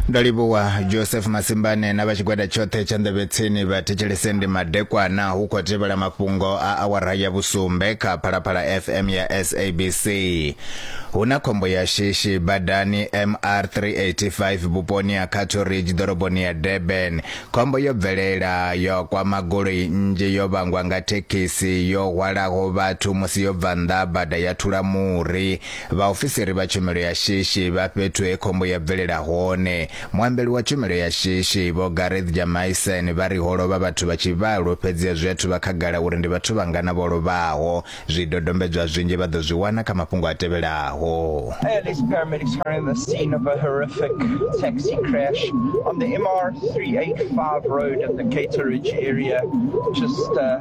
ndo livhuwa joseph masimbane na vha tshigwada tshoṱhe tsha nḓevhetsini vha thetshelese ndi madekwana hu khou tevhela mafhungo a awara ya vhusumbe kha phalaphala fm ya sabc hu na khombo ya shishi badani mr 385 vhuponi ha cattle ridge ḓoroboni ya durban khombo yo bvelela yo kwama goloi nnzhi yo vhangwa nga thekhisi yo hwalaho vhathu musi yo bva nnḓa bada ya thula muri Vhaofisiri vha tshumelo ya shishi vha fhethu he khombo ya bvelela hone. Muambeli wa tshumelo ya shishi, Vho Gareth Jamaisen, vha ri ho lovha vhathu vha tshivhalo fhedzi a zwi athu vha khagala uri ndi vhathu vhangana vho lovhaho. Zwidodombedzwa zwinzhi vha ḓo zwi wana kha mafhungo a tevhelaho. Airlift paramedics are in the scene of a horrific taxi crash on the MR385 road at the Cateridge area, just uh,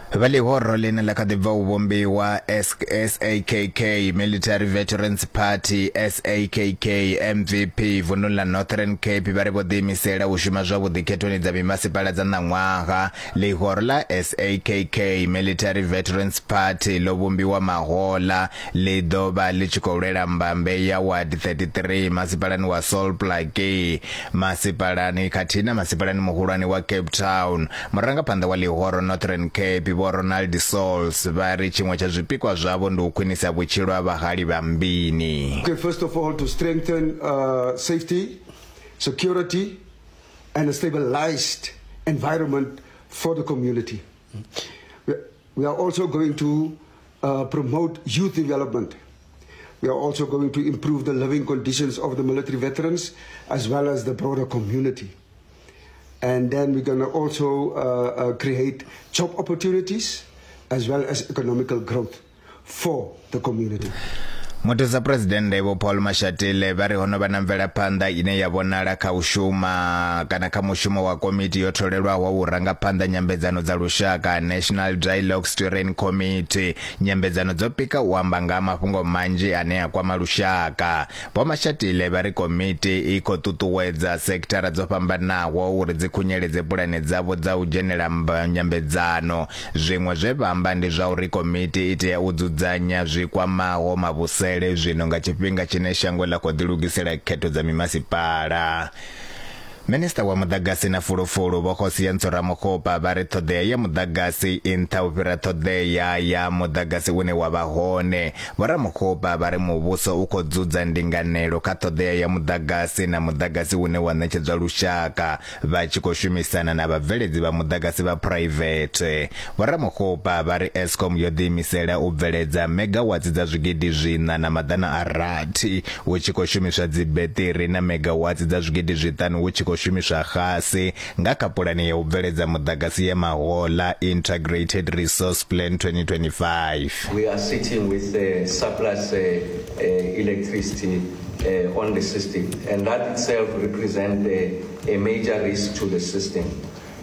Vha ḽihoro ḽine ḽa kha ḓi bva u vhumbiwa, SAKK, Military Veterans Party, SAKK, mvp, vunḓuni ḽa Northern Cape vha ri vho ḓiimisela u shuma zwavhuḓi khethoni dza mimasipala dza ṋaṅwaha. Ḽihoro ḽa SAKK, Military Veterans Party, ḽo vhumbiwa mahoḽa ḽi ḓo vha ḽi tshi khou lwela mbambe ya ward 33 masipalani wa Sol Plaatje masipalani khathihi na masipalani muhulwane wa Cape Town. Murangaphanḓa wa ḽihoro Northern Cape Vho Ronald Sauls vha ri tshiṅwe tsha zwipikwa zwavho ndi u khwinisa vhutshilo ha vhahali vha Mbini. Okay, first of all to strengthen uh, safety, security and a stabilized environment for the community. We are also going to uh, promote youth development. We are also going to improve the living conditions of the military veterans as well as the broader community. And then we're going to also uh, uh, create job opportunities as well as economical growth for the community. muthusa phuresidennde vho paul mashatile vha ri ho no vha na mvelaphanḓa ine ya vhonala kha u shuma kana kha mushumo wa komiti yo tholelwaho wa u rangaphanḓa nyambedzano dza lushaka national dialogue Steering Committee. Nyambedzano dzo pika u amba nga ha mafhungo manzhi ane a kwama lushaka. Vho Mashatile vha ri komiti i khou ṱuṱuwedza sekithara dzo fhambanaho uri dzi khunyeledze pulane dzavho dza u dzhenela nyambedzano. Zwiṅwe zwe vha amba ndi zwa uri komiti i tea u dzudzanya zwi kwamaho mavhusele zwino nga tshifhinga tshine shango ḽa khou ḓilugisela khetho dza mimasipala. Minisiṱa wa Muḓagasi na Fulufulu Vho Kgosientsho Ramokgopa vha ri ṱhoḓea ya muḓagasi i nṱha u fhira ṱhoḓea ya muḓagasi une wa vha hone. Vho Ramokgopa vha ri muvhuso u khou dzudza ndinganelo kha ṱhoḓea ya muḓagasi na muḓagasi une wa ṋetshedzwa lushaka vha tshi khou shumisana na vhabveledzi vha muḓagasi vha phuraivethe. Vho Ramokgopa vha ri Eskom yo ḓiimisela u bveledza megawatsi dza zwigidi zwiṋa na maḓana a rathi hu tshi khou shumiswa dzibeṱiri na megawatsi dza zwigidi zwiṱanu hu tshi khou shumiswa xasi nga kha Pulane ya u Bveledza Muḓagasi ya Mahoḽa, Integrated Resource Plan 2025. We are sitting with uh, surplus uh, uh, electricity uh, on the system, and that itself represents uh, a major risk to the system.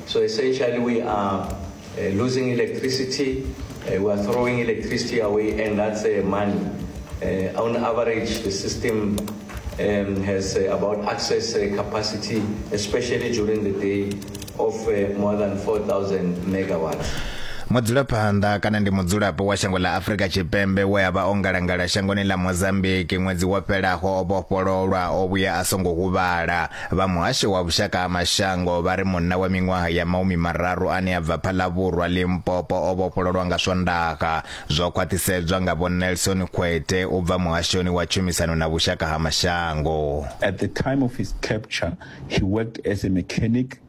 So essentially we are uh, losing electricity, uh, we are throwing electricity away and that's uh, money. Uh, on average, the system um, has uh, about access uh, capacity, especially during the day, of uh, more than 4,000 megawatts. mudzulaphanḓa kana ndi mudzulapo wa shango ḽa afurika tshipembe we a vha o ngalangala shangoni ḽa mozambiki ṅwedzi wo fhelaho o vhofhololwa o vhuya a songo huvhala Vha muhasho wa vhushaka ha mashango vha ri munna wa miṅwaha ya maumi mararu ane a bva Phalavhurwa, Limpopo o vhofhololwa nga Swondaha. Zwo khwaṱhisedzwa nga Vho Nelson Khwete u bva muhashoni wa tshumisano na vhushaka ha mashango. At the time of his capture, he worked as a mechanic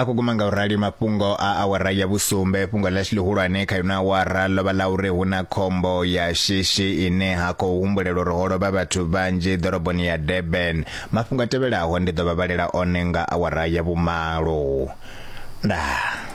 a khou guma nga u rali mafhungo a awara ya vhusumbe fhungo ḽashu ḽihulwane kha yona awara ḽo vha ḽa uri hu na khombo ya shishi ine ha khou humbulela uri ho lovha vhathu vhanzhi ḓoroboni ya durban mafhungo a tevhelaho ndi ḓo vha vhalela one nga awara ya vhumalo ndaa